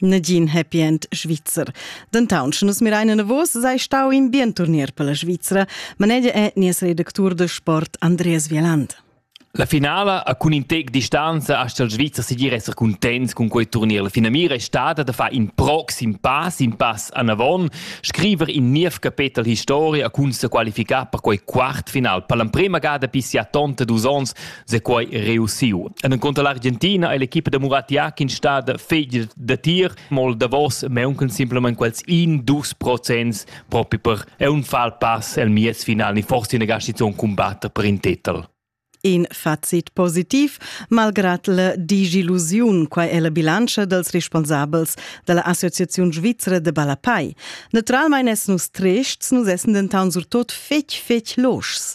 Negin happy end svizzer. Dentaun, sche nus mirein enavos, sei stau in bien turnier per la Svizra, manegia è nies redactur de sport Andreas Vieland. La finala a cun in tec distanza ha il Svizzer sigir esser contents con quei turnier. La finamira è stata da far in proxim pass, in pass anavon, scriver in niev capetel historia cun se qualificar per quei quart final. Per l'emprema gada pissi a tonta dus ons se quai reussiu. En conto l'Argentina è l'equipa da Murat Yakin stata fegl da tir, mol davos meunken simplement quels in dus procents propi per è un fal pass el mies final ni forse ne gasti un combatte per in titel. In facit positiv, malgrad la digilusiun, quai è la bilantscha dels responsabels della Associazione Svizzera de Balapai. Naturalmein es nus trests, nus essen dentan surtot fetg fetg loschs,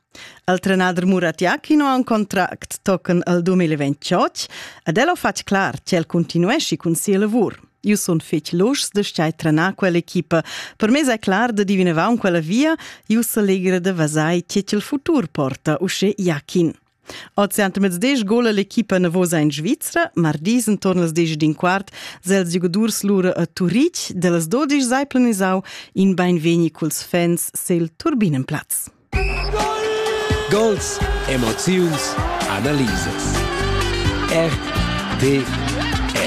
Il trenader Muratja Kino ha un contract tochen al 2028 ed el ha fatg clar ch'el continuesci cun sia lavur. Io sun fetg luschs de stai trenar quell'equipa. Per me è clar de diveneva un quella via, io s'allegra de vasai che il futur porta usce Jakin. Ozi ant mez deg gol l'equipa navosa in Svizra, mardis intorn las deg din quart, sels giodurs lura a Turic, de las dodisch sei planisau in beinvegni culs fans se il turbinen platz. Gols, emoziuns, analisas. RTR